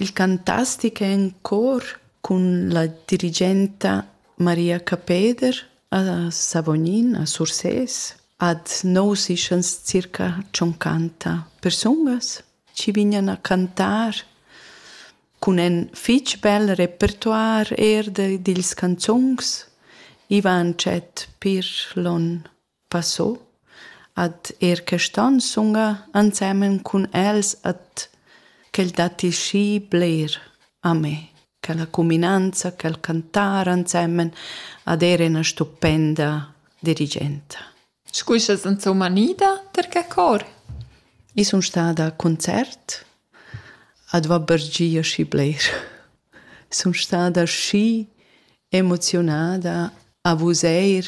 Il cantastic è en cor cun la dirigenta Maria Capeder a Savognin a Sursés. Ad nous ischans circa tschoncanta persungas chi vignan a cantar cun ün fich bel repertoir eir dils canzuns. I va tschet pir lon Passo ad er quest'on sunga ensemen cun els et quel datti schi bler a me, quella cuminanza, quel cantar ensemen ad er ena stupenda dirigenta. Scu sast insomma nida ter che cor? I sun stada a concert ad va bergia schi bler. Sun stada schi emoziunada a vus eir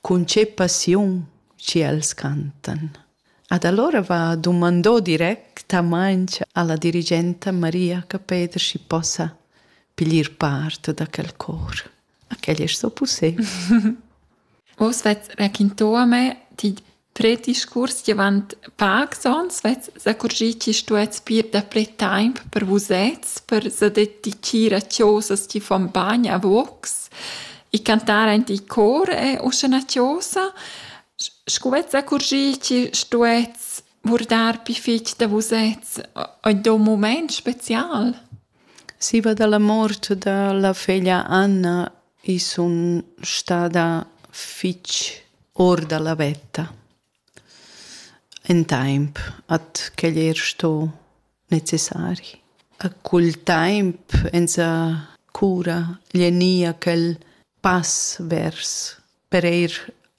Cun che passiun ch'els cantan. Ad allora va dumandò directamaing alla dirigenta Maria Capeder schi possa piglier part da quel cor. A quel es so pussé. Oz vets raquinto a me, ti Prediscurs davant pacs onns vess s'accurgì chi stuess ir dapre taimp per vusets, per sa dedichir a chosas chi fan bagn a vocs e cantar aint il cor è uschè üna chosa. Scu vess s'accurgì chi stuess vurdar pi fich da vusets in do mumaint special? Siva da la mort da la feglia Anna i sun stada fich or da la vetta ün taimp at quel eir sto necessari. Cul taimp esa cura gnü quel pass vers per eir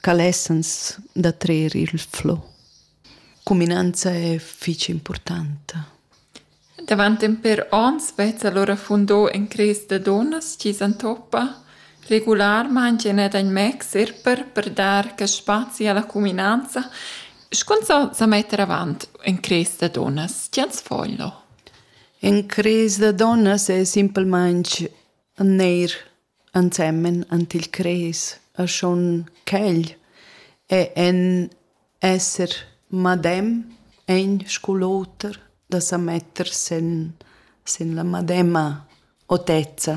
ca lessans da trer il flow. Cuminanza è fich importanta. Davant en per ons vezza allora fundò en cres da donnas chi s'antoppa regularmaing e net ein mexer per per dar che spazi alla cuminanza Scun so sa metter avant en cres da donnas, ti ans foglio. En cres da donnas è simpelmente neir ensemen ant il cres e schon quegl è en esser madem egn scu l'oter da sa metter sen sen la madema otezza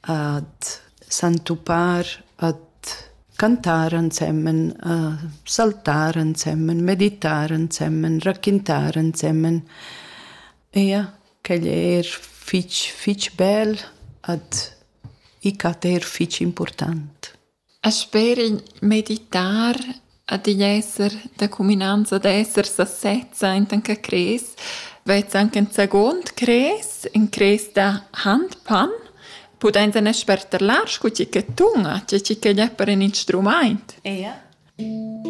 ad s'entupar ad cantar ensemen a saltar ensemen meditar ensemen raquintar ensemen. Ia Quegl è er fitg, fitg bel ad i cat er fitg important. E sper meditar ad igl esser da cuminanza d'esser sa sezza intan che cres, vez anche in second cres, in cres da handpan, pudains en sperterlar scu tgi che tunga, tgi che glia per in instrumaint. Ea.